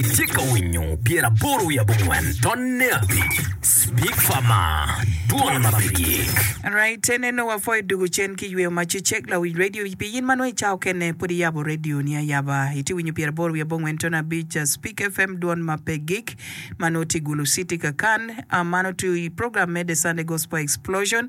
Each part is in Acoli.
Itye ka winyo pyer aboro wiye abongwen tonne abic Speak Farma dwol ma pe gik. Alright, en eno wa pwoyo dugu cen ki yweyo mac i cek lawic radio pi in ma nongo i ca okene pud i yabo radio ni ayaba i tye winyo pyer aboro wiye abongwen tonne abic Speak FM dwol ma pe gik ma nongo tye i Gulu City Kakan a mano to i program me The Sunday Gospel Explosion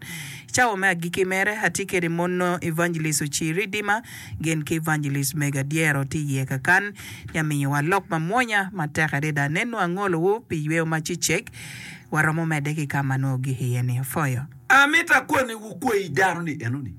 cawa me agiki mere atye kede mono Evangelist Ocir Ridima gin ki evangelist mega dyero tye iye kakan ya miyowa lok mamwonya matek adada nenu angolowu pi yweyo ma cecek waromo medde ki kama nongo gik iye ni afoyo. Amito akoni wu kwai dano ni enoni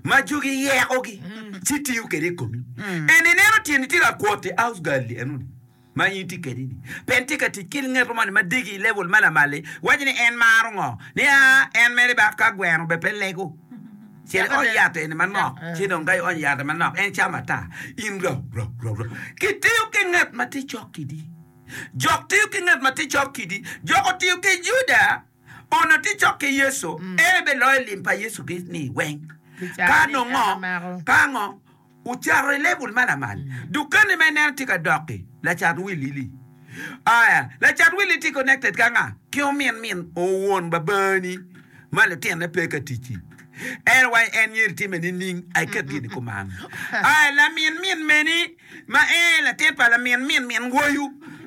ma jogi yeko gi ci tiyo kede i komi eni ineno tyeni tye ka kwoti house girl enoni. ma in itye kwede-ni pe tye ka tic ki ngeto moni ma degi i level ma lamal-li, iwaco ni en maro ngo? Ni, Aa, en mere ba ka gweno bene pe lego. Cen iony yat eni manok, ci dong ka ionyo yat-ti manok, en camo ata. In rou, rou, rou, rou. Kitiyo ki nget ma tye cok kidi. Jok tiyo ki nget ma tye cok kidi. Jok otiyo ki Juda, onongo tye cok ki Yecu, en aye beloyo lim pa Yecu Kricito-ni weng. Ka nongo, ka ngo? Ocato i level ma lamal. Dukani ma ineno tye ka dok-ki, lacat Willy-li. Aya, lacat Willy tye connected ki anga? Ki omin min won babani ma lutine pe ka tic-ci. En wa en myero itimme nining? Ai ket gin i kuman. Aya, lamin min meni ma en aye latin pa lamin min min woyu,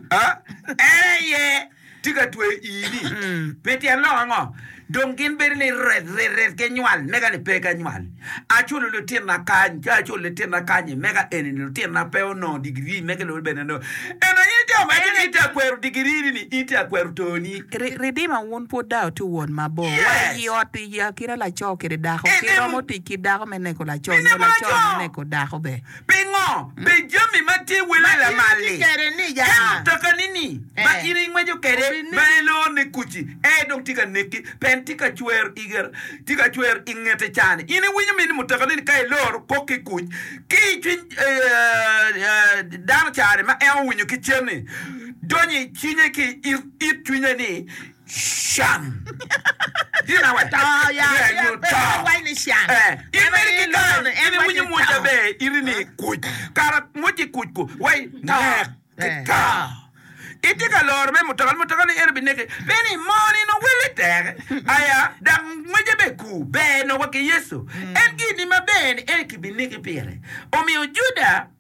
en aye tye ka tweyo ii-ni, pi tyen lok ango? Dong gin bedo ni ret ret ret ginywal, mega ni pe ganywal. Aculo litinna kany, ka aculo litinna kany-nyi, mega eni-ni litinna pe onongo digirii mege lube bene dong. Ento aye jo ma gin gitye ka kwero digirii-ni ni in tye ka kwero too-ni. Ri, ridima wun pud dau tye won mabor. Wa Yes. iyi ot i akina laco kede dako, ki Ineko. romo tic ki dako me neko laco, nyo Ineko laco laco. me neko dako be. Pingo be jami ma tye wele lamal-li? Ka mutokani-ni ma in ingweco kwede ma elor ni kuc-ci aye dong tye ka neki, pien tye ka cwer i gire, tye ka cwer i ngete cani, in iwinyo min ni mutokani-ni ka elor kok ki kuc ki i cwiny dano cani ma en owinyo ki cen-ni, donyo i cinye ki i it cwinye ni, Chan. Gin awe? To ya, ya, pe giwaco ni can. In meri ki kany in iwinyo mwoc aber iri ni kuc, kara mwoc i kuc ku wai nek ki to. Itye ka loro me mutoka, mutoka ni eno bineki pe ni moo ni nongo welle tek aya dok ngwece be ku ber nongo wa ki Yecu. En gin ni maber ni en ki bineki pire. Omiyo Juda.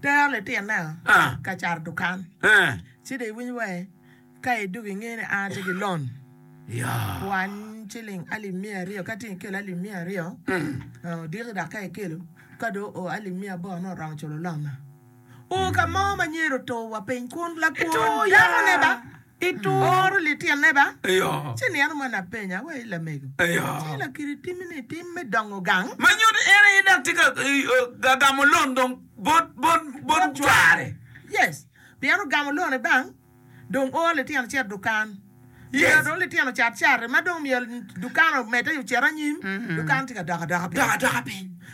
Tero litinna ka cato dukan, ci dong iwiny wa ka i dugo inge ni an atye ki lon kwany ciling alip miya aryo ka tye ikelo alip miya aryo odiki dok ka ikelo ka dong oo alip miya aboro nongo oromo culo lon-na. Oo ka mo ma myero otur wa piny kun lakwo dako ne ba. Ituro litine ba? Ci nino moni apenya wa i lamego, ci lakiri timmi ni tim me dongo gang? Ma nyuto in aye dok tye ka gamo loan dong bot cware. Yes, pien ogamo loan-ni bang, dong oo litino cet dukan. Myero dong litino cat cati ma dong myero dukan omedde ocit anyim, dukan tye ka dok adoka piny.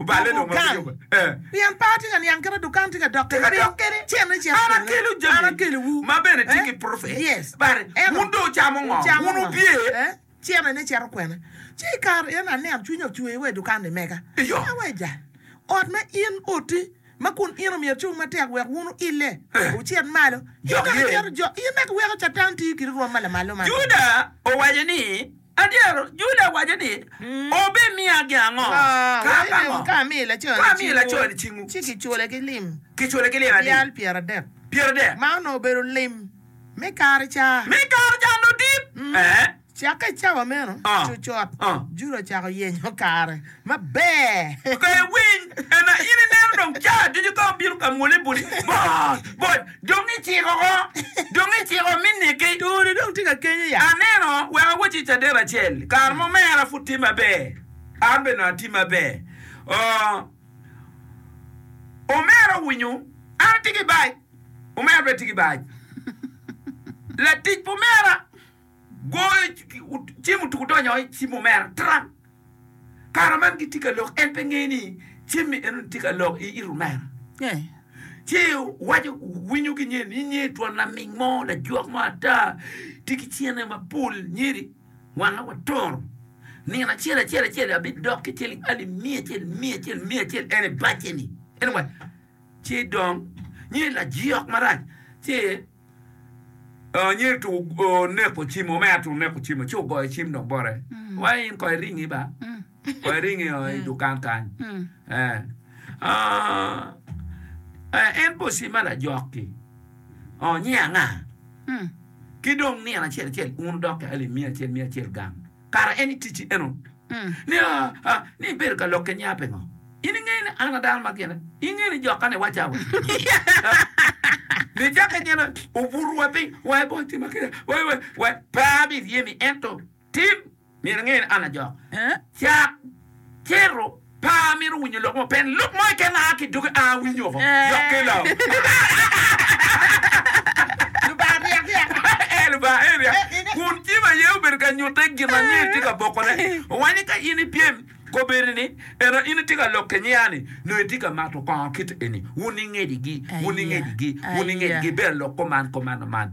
Oballe dong ma bedo pien par tye ka niang kite dukan tye ka dok kede cene cito an akelo jami ma bene tye ki profet bade wun dong wucamo ngo wun wubye cene ni cito kwena ci i kare eno aneno cwiny ocwer wa i dukan ni mega ka wa i jal ot ma in oti ma kun in omyero cung matek wek wun wuille wucit malo in dok iweko catan tiyo kidi rwom ma lamal lomata. Adier, Julia owaco ni, Wubimiyagi ango? Ka ango? Ka amiyo laconi cingu, ci kicule ki lim abyal pyeradek, ma onongo obedo lim me kare ca nudip. Cakke i cawa meno, cucot Julia ocako yenyo kare maber. Pe iwiny, ento in ineno dong caa ducu ka obino ka mwoli buli bot bot dong iciko ko, dong iciko mi niki. Tuni dong tye ka kenyo ya. Aneno, wek awacci i caden acel, kare mo mera pud tye maber, an bene dong atye maber. Oo, omera owinyo an atye ki bac, omera bene tye ki bac, latic pa omera. Goyo cim otuko odonyo i cim omera tran. Kare man gitye ka lok en pe ngeyo ni cimmi enoni tye ka lok i it omera. Ci waco winyo ki nyer ni nyer twon laming mo lajwok mo ata tye ki cene mapol nyeri wanga wa toro nino acel acel acel abidok ki ciling alip miya acel miya acel miya acel en i bacce ni anyway ci dong nyer lajwok marac ci Onyo eto oneko cim o me ato oneko cim o ci ogoyo cim dong bote wai in ko iringi ba ko iringi o i dukan kany en pe ocima lajok ki onyo anga ki dong nino acel acel un odok ki alip miya acel miya acel gang. Kara en iticci eno ni aa ni ibedo ka lokke niya pingo? In ingeyo ni an a dano ma gine? Ingeyo ni jokka ni waca wa ni jake nyen obutu wa piny wa i bot tima kida wa wa pe abi ryemi ento tim myero ingeyo ni an a jok cak. Ciro, Pa amito winyo lok mo pen lok mo keken aa ki dogi aa winyo oko dok ki lam. Lubanga ryak ryak. Ee, Lubanga aye ryak. Kun cim aye obedo ka nyutte gin ma nyer tye ka bokone. Owach ni ka in ipyem koberi ni, Eno in itye ka lok ki nyer-ni, nongo itye ka mato kongo kit eni, wun ingecigi, wun ingecigi, wun ingecigi, bene lok kuman, kuman, man.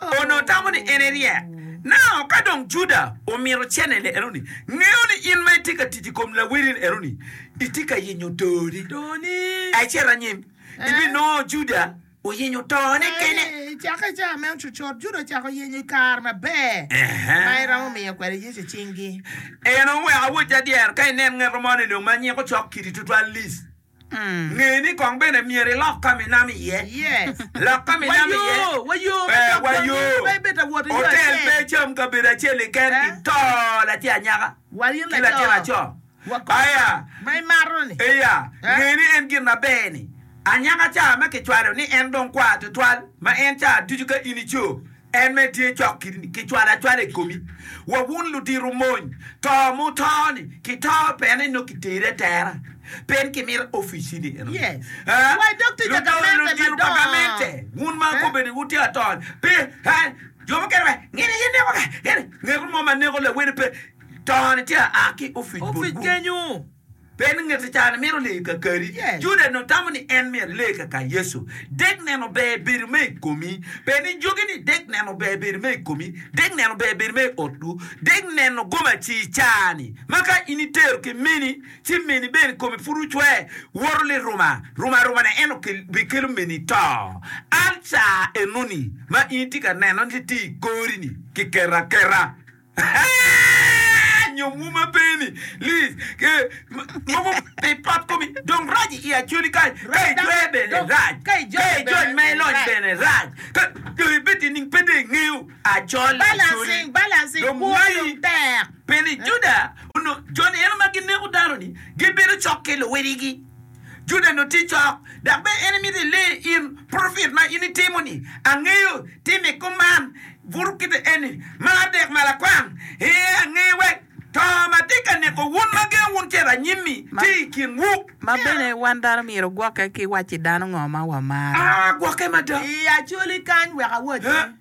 Onongo tamo ni en eryek. Nao ka dong Juda omito cenele enoni, ngeyo ni in ma itye ka tic i kom lawerini enoni, itye ka yenyo toni. Ecit anyim, ibinongo Juda oyenyo tone kene. I cakke i cawa me ocucot, Juda ocako yenyo i kare maber ma eromo miyo kwede Yecu cinggi. En oweko awoc adyer ka inen ngeto mo ni dong ma nyeko cok kidi tutwal-li. Nge ni kong bene myero ilok ka minam iye. Lok ka minam iye. Wa yo, otel pe cam kabedo acel keken i to latin anyaka ki latin aco. Aya, iya, nge ni en gin aber ni anyaka ca ma kicwalo ni en dong kwar tutwal ma en ca ducu ka in ico. En mere tye cok ki cwalo acwala i komi. Wa wun ludito mony, to ma wuto-ni, kito pien en nongo kitere atera, pe en kimito officini eno. Ludong ludito pa gamente, wun ma kobeni ni wutye ato-ni, pe, he, jo mukene pe, ngene aye neko-ka, ngene, ngeko mo ma neko lawene pe, to-ni tye aa ki ofic botwu. Pe ngeto caa ni myero lee ka kadi. Juda nongo tamo ni en myero lee ka ka Yecu. Dek neno ber bedo me i komi. Pe ni jogi ni dek neno ber bedo me i komi, dek neno ber bedo me i otwu, dek neno gomaci i caa ni ma ka in i tero ki meni ci meni bene kome pud ocwer woto liruma ruma ruma ne eno bi kelo meni to. An caa enoni ma in itye ka neno ni tye i kori ni ki keto aketa. Nyo wuma peni lis ke mogo pi pot komi dong rac i Acholi kany ka i jwer bene rac ka i jony ma i lony bene rac ka dong i bed nining pe dong i ngeyo Achol Acholi dong wai peni Juda onongo joni eno ma gineko dano ni gibedo cok ki luwiligi. Juda nongo tye cok, dok bene en mito ile in propet ma in itimo-ni. Angeyo tim i kom man, buto kite eni, ma adek ma lakwang. Ee, angeyo wek to ma tye ka neko wun ma gengo wun cito anyim-mi tye i kinwu. Ma bene, wan dano myero ogwokke ki wacci dano ngo ma wamaro. A, gwokke mada. I acoli kany wek awacci.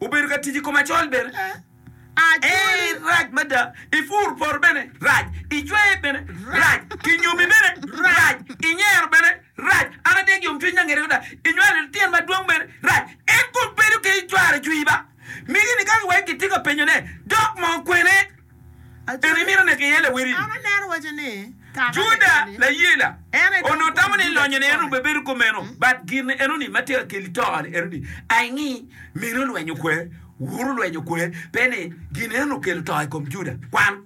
Obedo ka tic i kom acol bene. En rac mada. I pur poto bene rac. I cweye bene rac. I nyomi bene rac. I nyero bene rac. An atek yomcwiny na ngete mada. I nywalo litino madwong bene rac. En kong bedo kede cware cwii ba? Migi ni ka wai kitye ka penyone, dok moo kwene? Bene imito neki iye lawili? Juda layela onongo tamo ni lonyo ne en rum ebedo kumeno but gin eno ni ma tika keli to ni eno ni I ngi mine olwenyo kwe woro olwenyo kwe pe ni gin eno ni okelo to i kom Juda kwan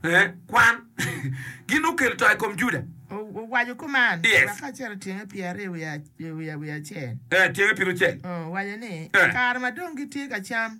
eh kwan gin okelo to i kom Juda owaco kuman yes wa ka cito tyenge pyeraryo wiye eh tyenge pirucel owaco ni eh kare ma dong gitye ka cam.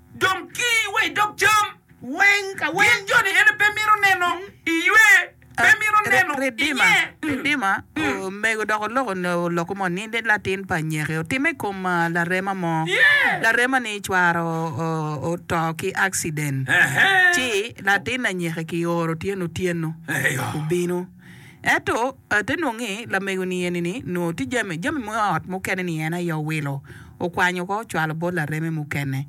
Dong ki wa i dog cam. Weng ka weng. Gin joni en pe mito neno i ywe, pe mito neno i nye. Ridima, Omego dok oloko lokke mo ni latin pa nyeke otimme i kom larema mo. Larema-ni cware oto ki akciden, ci latin anyeke kioro otyeno otyeno obino. Ento ate nongo ni lamego-ni eni-ni nongo tye jami, jami me ot mukene-ni en aye owilo, okwanyo oko ocwalo bot lareme mukene.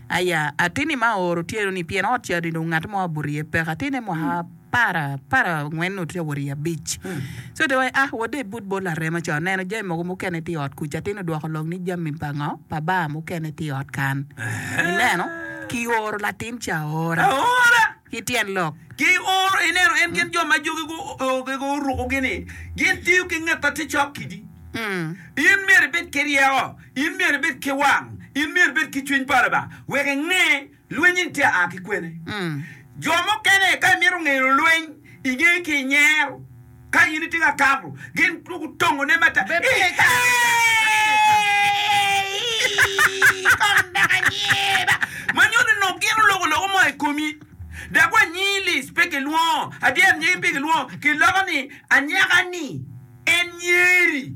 Aya, atinni ma ooro tyeno-ni, pien ot ca-ni dong ngat mo abuto iye peke, atinne mwaka apar, apar angwen nongo tye ka wot i abic. So de wai, ah, wode ibut bot larema ca, oneno jami mogo mukene tye i ot kuca, atinni odwoko lok ni, Jami pa ngo? Pa baa mukene tye i ot kan. Ineno? Kioro latin ca aora. ki tyen lok. Ki oro ineno en gin jo ma jogi gugege orukogi ni gin tiyo ki nget ma tye cok kidi. In myero ibed ki ryeko, in myero ibed ki wang, in myero ibed ki cwiny pa Lubanga wek inge lweny eni tye aa ki kwene. Jo mukene ka imito ngeyo lweny ingeyo ki inyero. Ka in itye ka kato, gin dwogo tongone matek. Bed ki kec ka in ikato. Kong dok anyiba. Ma nyuto nongo gin oloko loko mo i komi. Dok wa nyingi Liz pe kilwongo Adyero nyingi pe kilwongo. Kiloko ni anyaka-ni en nyeri.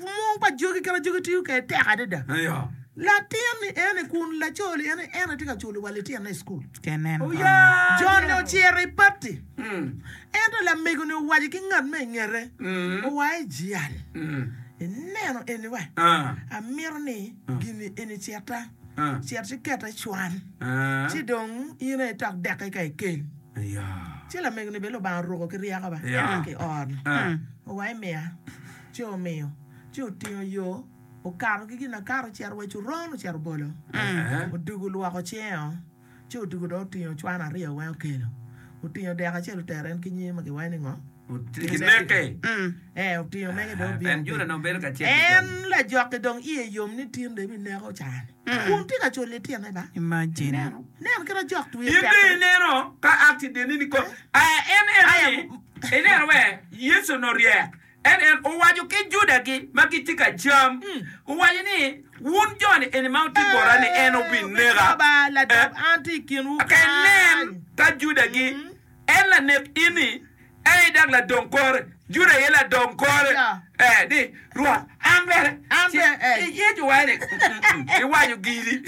Mung pa jogi kit ma jogi tiyo kwede tek adada. Latin ni ene kun laco li ene ene tye ka culo wa litino i cukul. Jon ni ocito i pati, ento lamego ni owaco ki ngat ma i ngete, Owa i jal, ineno eni wa, amito ni gini eni cita, cit ci kete i cwan, ci dong in aye tok deke ka ikel. Ci lamego ni bene Lubanga oruko ki ryeko ba, ki or, owa imiya. Ci omiyo, ci otingo yo, okato ki ginakato ocito wa i coron, ocito bolo, odugo olwoko cinge o, ci odugo dong otingo ocwano aryo weng okelo, otingo dek acel otero en ki nyinge ma kiwaco ni ngo? Kimeke. Ee, otingo mege dong obino. Bene Juda dong bedo ka cito i En jami. lajoki dong iye yom ni tinde ebineko ocaa-ni, kun tye ka culo litine ba. Imagine. Nen kit ajok twi In dong tekre. ineno ka a ki dini-ni kong? Aya, en eno-ni, Aya. ineno wee, Yecu-ni oryek. Ento en owaco ki Juda-gi ma gitye ka cam, owaco ni, Wun jo-ni eni ma wutye bota ni en obineka, eka inen ka Juda-gi, en lanek in-ni, en aye dok ladong kore. Juda aye ladong kore ni, Rwot, an bene ci iyeco wa ni, iwaco giri.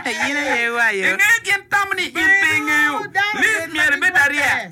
Ingeyo gin tam ni in pe ingeyo lim myero ibed arye.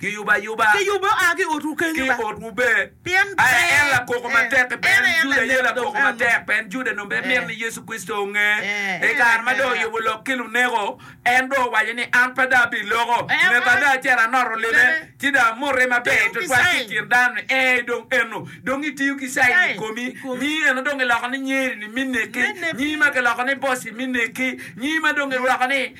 Kiyubo ayuba. Kiyubo oa ki i otwu kenyo ba. Ki i otwu be. Pien pe. Aye en lakoko matek-ki. Pe en aye Juda aye lakoko matek. Pien Juda dong pe mito ni Yecu Kricito onge. I kare ma dong oyubo lok ki luneko, en dong owaco ni, An pe dong abiloko nge bada acel anoto lime, ci dong amote maber twatwal ki i kin dano-ni. Ee, dong eno. Dong itiyo ki caini i komi. Nyingi eno dong kiloko ni nyeri-ni me neki, nyingi ma kiloko ni boss-i me neki, nyingi ma dong kirwako ni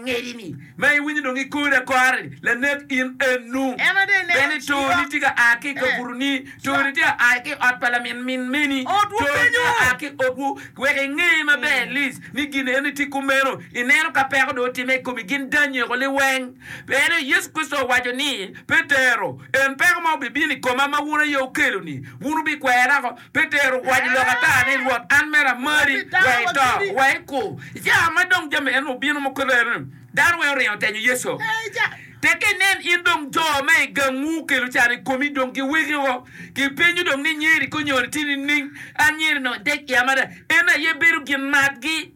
ngedi-ni. Ma iwinyo dong ikori akora-ni, lanek in enu! Bene itoni tika a ki i kabutoni? Toni tika a ki i ot pa lamin min meni? Toni tika a ki i otwu? Wek inge maber Liz, ni gin eni tye kumeno. Ineno ka peko dong otimme i komi, gin danyi oko liweng. Pien Yecu Kricito owaco ni, Petero, en peko ma obibino i koma ma wun aye wukelo-ni, wun wubikwera oko. Pi tero kwayi lok ata ni, Rwot, an mere amari, we ito, we ikur. I kica ma dong jami enoni obino ma kore-ni, dano weng oringo tenyo Yecu. Tek inen in dong jo ma i gangwu okelo can i komi dong giweki woko. Gipenyo dong ni, 'Nyeri konyo-ni tye nining? Anyeri-ni odec i amada, en aye bedo gin matgi.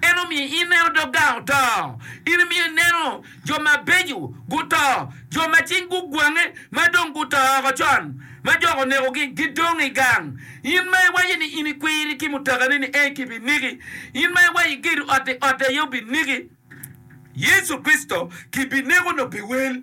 En omiyo ineno dog gang oto, en omiyo ineno jo mabeco guto, jo ma cing gugwange ma dong guto oko con, ma jok onekogi, gidong i gang. In ma iwaco ni in ikwiri ki mutakani ni ei kibiniki, in ma iwaco igedo ot-ti ot aye obiniki, Yecu Kricito kibineko nongo pi wel.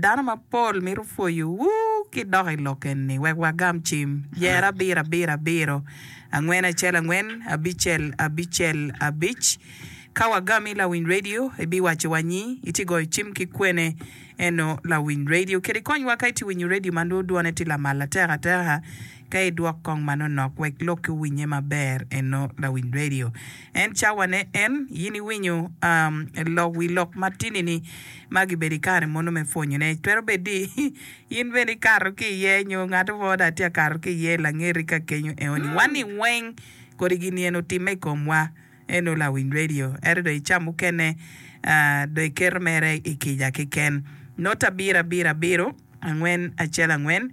Dano mapol mito pwoyowu ki dok i lok eni wek wagam cim. Yer abiro abiro abiro, angwen acel angwen, abicel abicel abic. Ka wagami lawiny redio, ibiwaco wa nyi, itye goyo cim ki kwene, eno lawiny redio. Keri konywa ka itye winyo redio ma nwo dwone tye lamal atek ateka. Ka idwok kong manonok wek lok ki winye maber eno lawiny radio en cawa ne en yin iwinyo lok wi lok matini ni ma gibedo ikare mono me pwonyo ne twero bedo ni yin bene ikato ki iye nyo ngato mo dong atye akato ki iye langeri ka kenyo eo ni wani weng kodi gini eni otime ikom wa eno lawiny radio ento dong ica mukene dong iketo mere ikica keken note abiro abiro abiro. angwen acel angwen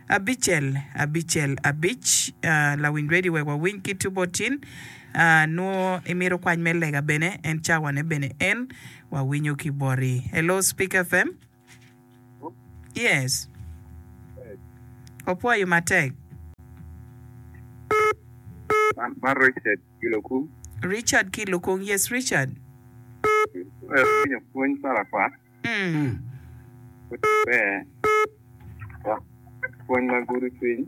abicel abicel abic lawiny radio wek wawiny ki two bot tin nwo imito kwany me lega bene en cawa ne bene en wawinyo ki boti hello speaker fm yes wapwoyo matek. Man Richard ki Lukung. Richard ki Lukung, yes Richard. Awinyo pwony parakwat. Pwony ma gudo cwiny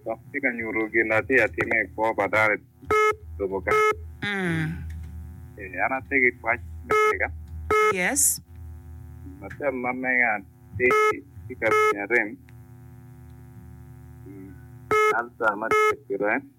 dok tye ka nyuto gin atye ka time i kwo pa dano i lobo ka. An atye ki pwoc me lega. Latin ma mega tye ki kabedi arem, alcer ma tye ka cito en.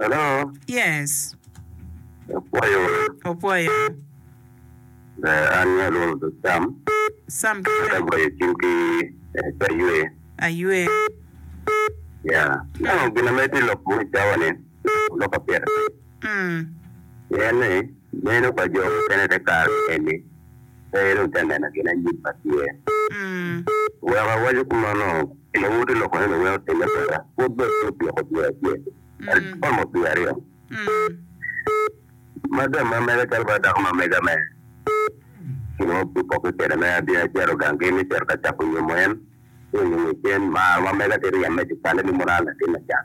Hello. Yes. Opwoyo. Opwoyo. Ber an me alwongo dog Sam. Sam ki Sam. Ata goyo cim ki eh, aywe. Aywe. Ya. Nano gina mere ti lok mo i cawa ni, lok apyeta. Mm. Pien ni. Meno pa jo mukene te kare eni pe dong te neno gin anyim ma tye. Wek awaco kumeno, pien wuti loko ni luwiny otimme kweda, pwod bene pe otyeko dwe acel, ento romo dwe aryo ma gin ma mega calo bala dako ma mega me kinongo pud opokke kwede me abino acito gang kene me cito ka cako nyomo en, ci onyo ngecen, mar ma mega tye ryem me cukalle ni mono an latin macan.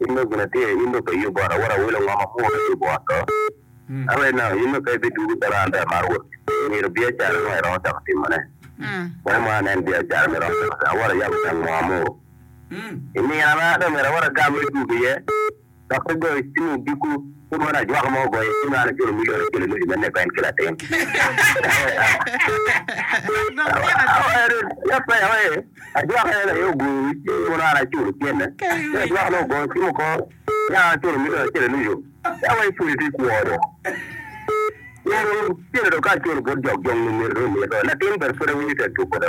In dong gina tye, in dong pe iyub ot, awoto awelo ngo ma pwongo me yubo ot to? Ka pe nang in dong pe ibidwogo calo an bene amaro wot kicwe, myero biacara mo iromo cako timone. Kwan mo anen biacara ma iromo cako timo, awoto ayabo gang mo amuru. I nino ma dong myero awot agam me dwogo iye, dok pe goyo cim odiko. Pud wan ajwaka ma ogoye ci nongo an aculo mili ot acel ilucu me neko en ki latin. Ajwaka en aye ogoyo wi cim kono an aculo cente. Ci ajwaka nongo ogoyo cim oko ci an aculo mili ot acel ilucu. Eka wa ipuli ti kwo do. Cente do ka aculo bot jok jong ni myero dong omito. Latin bene pud awinyo tek tuko do.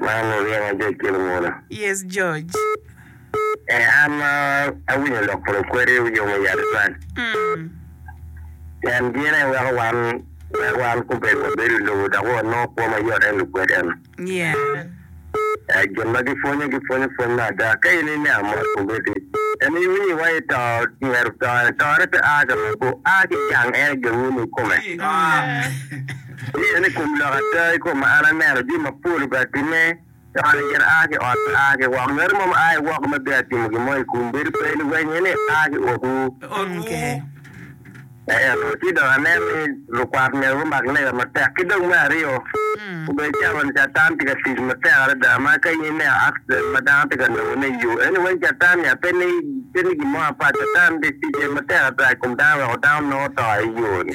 Man oryema George ki lunguda. Yes George. Eh an ma awinyo lok kun kweri wuyomo yat twal. Mm. Pien gin en weko wan wek wan kubed wabedo i lobo dok wanongo kwo ma yot en lukwed eno. Yeah. Eh gin ma gipwonyo gipwonyo pwony me ada. Ka in iniang mot komiti en iwinyi wa i to myero to en tore pe a ka meku a ki gang en gawunu i kome. Mm. Wuye ni kom lok ata i kom ma an aneno jami mapol obea timme, dok an myero aa ki ot me aa ki woko. Ngat mo ma aye woko ma bea timo gin mo i kum bedo pe liwennye ni aa ki okwu. Ento ci dok aneno ni lukwat myero gumak lega matek. Ki dong me aryo, obedo calo ni Catan tye ka tic matek adada ma ka in ineno accident ma dano tye ka nongone i yo, eni weng Catan ya? Pe ni pe ni gin mo apat. Catan ticce matek ata i kom dano weko dano nongo to i yo-ni.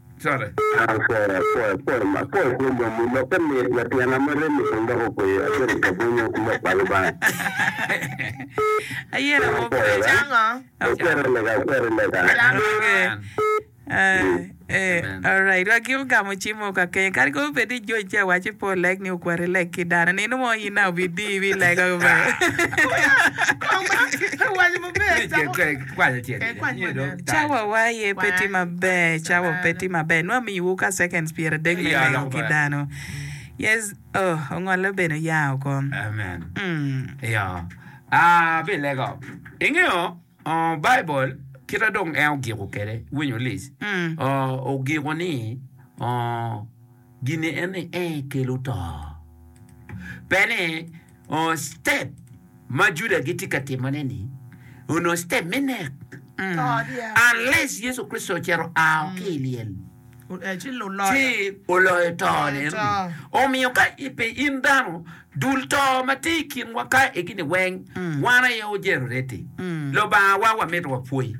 colle. Ayera mo pire cango. Alright wa gin ogamo cim mo kakeny kadi kong obed ni George tye awaco pe oleg ni okwat ileg ki dano nino mo in na obi dii ibi lego. Cawawa aye pe tye maber. Cawa pe tye maber. Nongo amiyowu ka seconds pyeradek me lego ki dano. Yes, oh, ongolle bene oya oko. Amen. Iyo. Ah, abilego. Ingeyo, oh, Baibul, kita dong en ogiko kwede, winyo lic, oh, ogiko ni, oh, Gini ene ee kelo to. Pe ni ongo step ma Juda gitye ka timone ni onongo step me nek. Unless Yecu Kricito ocito ao ki i lyel ci oloyo to ni. Omiyo ka pe in dano, dul to ma tye i kinwa ka egini weng wan aye ojero reti. Lubanga wa wamito wapwoyi.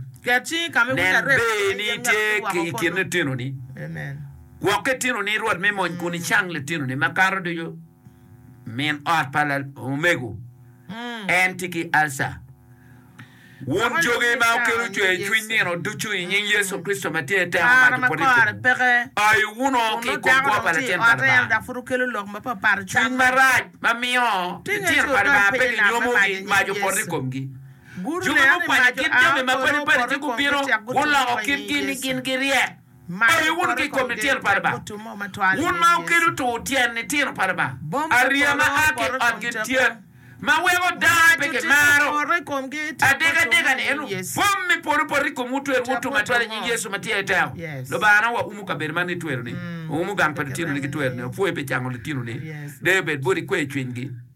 Nen ber ni itye ki i kin lutinoni. Gwok litinoni i rwot me mony kun icang litinoni makato ducu. Min ot pa omego en tye ki alca. Wun jogi ma okelo cwercwiny nino ducu i nying Yecu Kricito ma tye teko maco pwod ikubo, ayo wunu ki i kom kwo pa Latin pa Lubanga. Cwiny marac ma miyo litino pa Lubanga pe ginyomogi mac opot i komgi. Jogi gukwanyo kit jami mapadi padi ci gubino guloko kitgi ni gin giryek. Aye wun ki i kom litino pa Lubanga, wun ma wukelo tur tyen litino pa Lubanga, ariya ma a ki i otgi tyen, ma weko dano pe gimaro. Adekadeka-ni, ento bom me polo poto i komwu twero wutum atwera i nying Yecu ma tye i teko. Lubangana, waumo kabedo man ni tweroni, waumo gang pa lutinoni ki tweroni, wapwoyi pi cango lutinoni, deyo bed boti, kweyo cwinygi.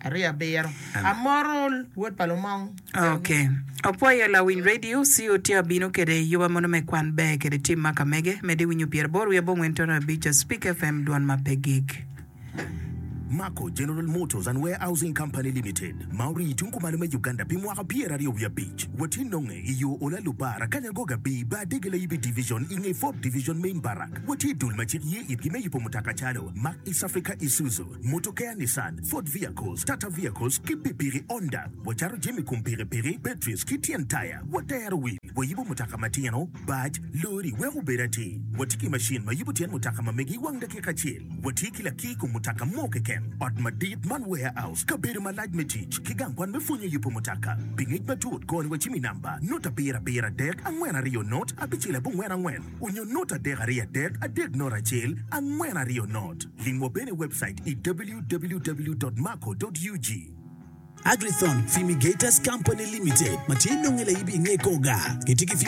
Aryo abiro. Amoro wod pa lumong. Ok. Opwoyo lawiny radio COT abino kede yuba mono me kwan ber kede tim ma kamege mede winyo pyer aboro wiye abongwen tono abic a Speak FM dwon ma pe gik. Mako General Motors and Warehousing Company Limited ma orii tung kumalo me Uganda pi mwaka pyer aryo wiye abic. Watye nonge i yo Ola Lubar, Akanya Goga Bii, Bar Dege Layibi Division i nge Fourth Division Main Barrack. Watye i dul ma cik ye itgi me yubo mutoka calo, Mack East Africa Isuzu, Mutokeya Nissan, Ford Vehicles, Tata Vehicles ki pikipiki Honda. Wacato jami kom pikipiki, batteries ki tyen taya. Watero wil, wayubo mutoka matino, bac, lori wek obed atir. Watye ki macin ma yubo tyen mutoka ma megi i wang dakika acel. Watye ki laki i kom mutoka mo keken. Ot madit man warehouse, kabedo malac me tic, ki gang kwan me pwonyo yubo mutoka. Pi ngec matut, kor wacimi namba, nota abiro abiro adek, angwen aryo not, abicel abongwen angwen. Onyo not adek aryo adek adek not acel angwen aryo not. Lim wa bene i webcait i www.maco.ug. Agrithon Fumigators Company Limited ma tye nonge laibi i nge Koga, gitye ki